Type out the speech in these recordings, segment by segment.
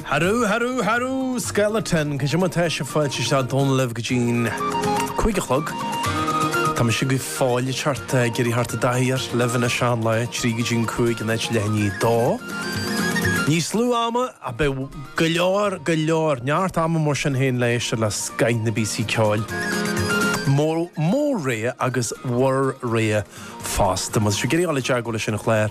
Harú, harú, harú! Skeleton, goidé mar tá sibh fáilte isteach Dónal libh go dtí'n cúig a chlog. Tá mise go fóill thart ag iarraidh theacht i dtaithí ar libh ina sean lá trí go dtí'n cúig in áit leath i ndiaidh a dó. Níos lú ama ach beidh go leor, go leor, neart ama mar sin féin le héisteacht le scoth na bpíosaí ceoil mo, mo rogha agus bhur rogha fosta. Má tá sibh ag iarraidh ghabháil i dteagmháil leis an chlár.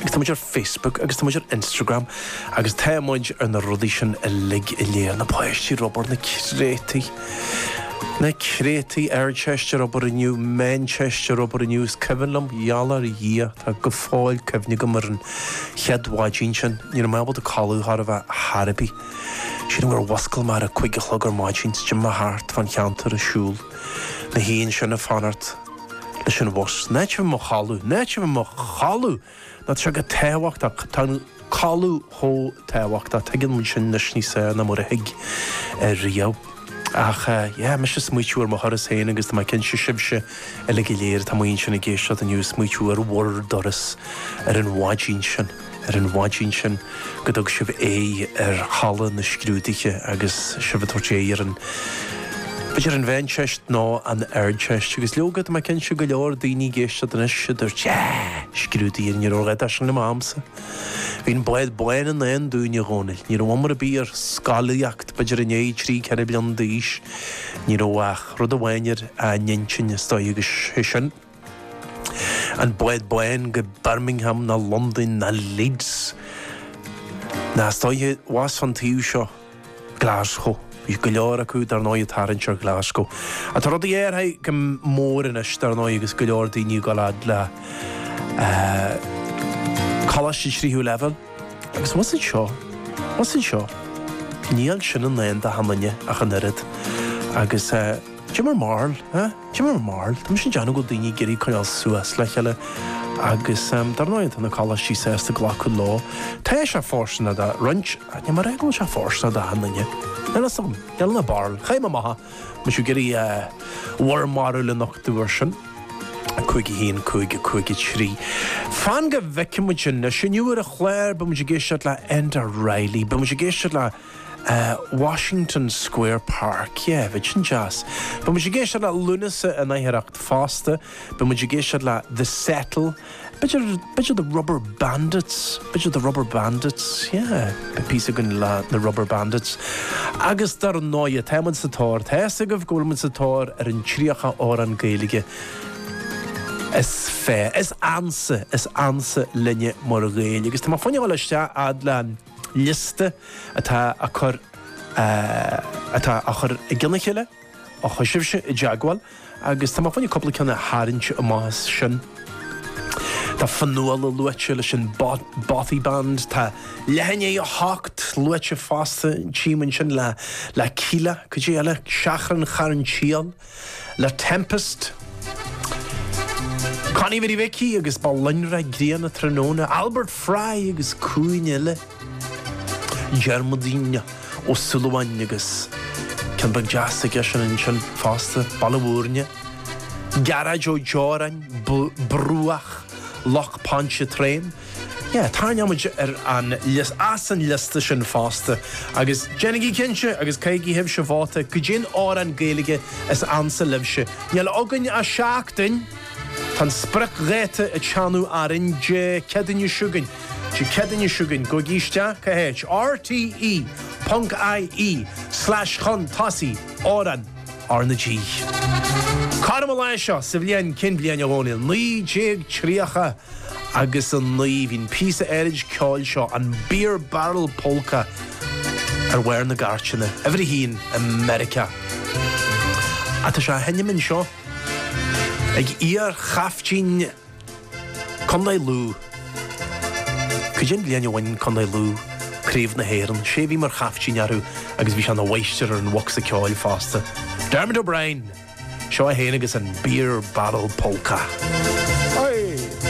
Agus tá muid ar Facebook agus tá muid ar Instagram agus tá muid ar na rudaí sin uilig go léir na páistí ar obair na créatúir na créatúir Ardteist ar obair inniu Meánteist ar obair inniu is cuimhin liom gheall ar Dhia tá go fóill cuimhne agam ar an chéad mhaidín sin ní raibh mé ábalta codladh chor ar bith chor ar bith sílim gur mhuscail mé ar a cúig a chlog ar maidín is d'imigh mé thart fán cheantar ag siúl na hoíche ansin ag fanacht leis an bhus. In áit a bheith i mo chodladh. In áit a bheith i mo chodladh! Nó tá sé chomh tábhachtach. Tá an codladh chomh tábhachtach. Tuigeann muid sin anois níos fearr ná mar a thuig riamh. Ach yeah, mise smaoitiú ar mo thuras féin agus tá mé cinnte sibhse uilig go léir atá amuigh ansin ag éisteacht inniu ag smaoitiú ar bhur dturas ar an mhaidín sin. ar an mhaidín sin go dtug sibh aghaidh ar halla na scrúduithe agus sibh ag tabhairt aghaidh ar an b'fhéidir an Mheánteist nó an Ardteist agus leoga tá mé cinnte go leor daoine ag éisteacht anois a dúirt yeah! scrúduithe ní raibh a dhath dó sin le m'amsa bhí an bád bán i ndán dúinn a Dhónaill ní raibh iomrá ar bith ar scolaíocht b'fhéidir i ndiaidh trí ceithre bliain d'aois ní raibh ach rud amháin ar a n-intinn is dóigh agus sé sin An bád bán go Birmingham ná Londain ná Leeds ná is dóiche abhus an taobh seo Glasgow? Bhí go leor acu dar ndóigh ag tarraingt ar Glasgow. Ach tá rudaí athraithe go mór anois dar ndóigh agus go leor daoine ag dul fhad le coláiste tríú leibhéal agus más an seo, más an seo, níl sin i ndán d'achan duine ach an oiread. Agus goidé bhur mbarúil, eh? Goidé bhur mbarúil? Tá mise ag déanamh go bhfuil daoine ag iarraidh coinneáil suas le chéile agus dar ndóigh tá na coláistí sásta glacadh leo. Tá sé fóirsteanach do roinnt ach níl mé ag rá go bhfuil sé fóirsteanach do achan duine. Níl 'fhios agam. Níl ann ach barúil. Chaith mé amach é, má tá sibh ag iarraidh bhur mbarúil a nochtadh ar sin. 5 1 5 5 3 Fan go bhfeicfidh muid anois, inniu ar an chlár beidh muid ag éisteacht le Enda Reilly. Beidh muid ag éisteacht le. Washington Square Park. Yeah, bheadh sin deas. Beidh muid ag éisteacht le Lúnasa in aicearracht fosta. Beidh muid ag éisteacht le The Settle. B'fhéidir, b'fhéidir The Rubber Bandits. B'fhéidir The Rubber Bandits. Yeah, beidh píosa againn le na Rubber Bandits. Agus dar ndóighe, tá muid sa tóir ar, tá fhios agaibh go bhfuil muid sa tóir ar an 30 amhrán Gaeilge is fearr, is ansa, is ansa linne mar Ghaeil. Agus tá mé chun a ghabháil isteach fhad le. liosta atá á cur atá á chur i gceann a chéile ó chuaigh sibhse i dteagmháil agus tá mé chun cúpla ceann a tharraingt amach as sin. Tá Fionnghuala luaite leis an Bothy Band, tá Leathan dhiaidh a hocht luaite fosta, tchím ansin le Kíla, cuid eile, Seachrán Charn tSiail, le Tempest, Connie Mhary Mhicí agus Ba Loinnre Grianna Tráthnóna, Albert Fry agus cionn eile, Diarmuidín Ó Súilleabháin agus ceann beag deas aigesean ansin fosta, Baile Mhúirne, Gearóid Ó Deoráin, Bruach Loch Pontchartrain, Yeah, tarraingeoimid ar an, as, an liosta sin fosta. Agus déanaigí cinnte agus caithigí sibhse vóta don amhrán Gaeilge is ansa libhse. Níl againn ach seachtain! Tá an spriocdháta ag teannadh orainn, Dé Céadaoin seo chugainn. Dé Céadaoin seo chugainn. Gabhaigí isteach chuig RTÉ ponc IE slash chun tosaigh amhrán R na G. Cothrom an lae seo sa bhliain, cén bhliain a Dhónaill? 1930. agus a 9. Bhí an píosa áithrid ceoil seo, an Beer Barrel Polka, ar bharr na gcairteanna, uimhir a haon i Meiriceá. Ach tá sé á sheinm anseo, ag iar-chaiftín Contae Lú. Cad é an bhliain a bhain Contae Lú craobh na hÉireann? Sé a bhí mar chaiftín orthu agus bhí sé ina mháistir ar an bhocsa ceoil fosta. Dermot O'Brien! Seo é féin agus an Beer Barrel Polka. Hoi!